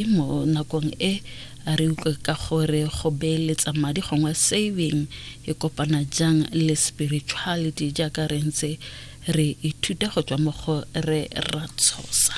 Mme mo nakong e a re utlwe ka gore go beeletsa madi gongwe saving e kopana jang le spirituality jaaka re ntse re ithuta go tswa mo go re Ratshosa.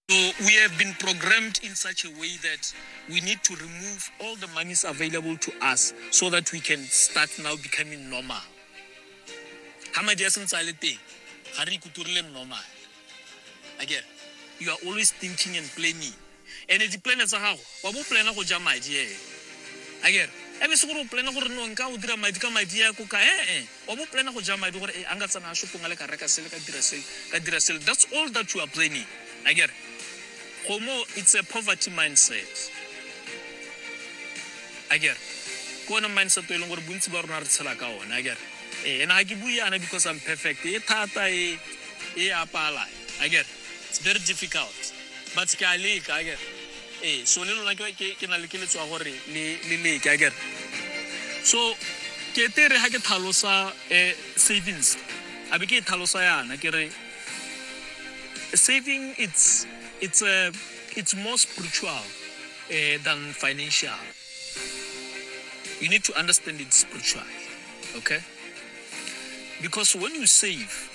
So we have been programmed in such a way that we need to remove all the monies available to us so that we can start now becoming normal. Ha madi a santse a le teng, ga re ikuturile normal. Again, you are always thinking and planning. And di plan tsa gago, wa bo plana go ja madi eh. Again, ebe se gore o plana gore no nka o dira madi ka madi ya ko ka eh eh. Wa bo plana go ja madi gore a nka tsamaya shopong a le ka reka sele ka dira sele ka dira sele that's all that you are planning a kere gomo it's a poverty mindset a kere ke one mindset e leng gore bontsi ba rona re tshela ka one a kere ee ena ga ke bue yana because i'm perfect e thata e e apala a kere it's very difficult but ke a leka a kere Ee, so le lona ke ke- ke na le keletso ya gore le le leke a kere so ke te re ga ke tlhalosa um savings a be ke e tlhalosa yana ke re saving it's it's a it's more spiritual uh, than financial you need to understand it spiritually okay because when you save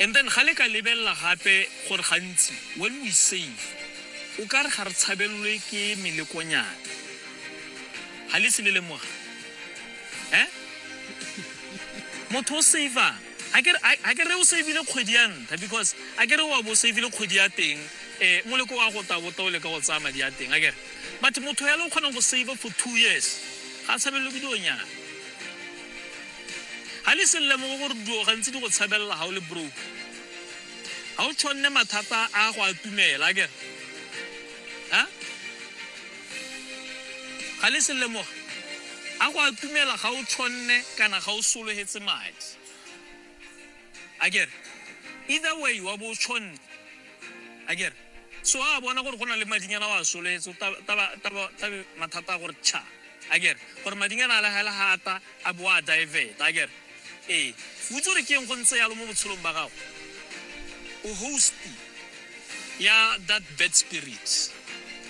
And then ga le ka lebelela gape gore gantsi when we save o ka re ga re tshabelelwe ke melekonyana ga le se le lemoga eh motho o savang ga ke re- ga ke re o savile kgwedi ya ntlha because a ke re wa bo o savile kgwedi ya teng um moleko wa go tabota o leka go tsaya madi a teng a kere but motho yalo o kgonang go save for two years ga a tshabelelwe ke dionyana ga le se lemogo gore duo gantsi di go tshabelela ga o le broke ga o tshwanne mathata a go a tumela ke a ga le se lemoga a go a tumela ga o tshwanne kana ga o sologetse madi a kere either way wa bo o tshwanne a kere so a bona gore go na le madinyana wa soletse tabe mathata a gore tšha a kere gore madinyana a legela ga ata a bo a diveta a kere ee futse gore keng go ntse yalo mo botshelong ba gago o hosti ya that bad spirit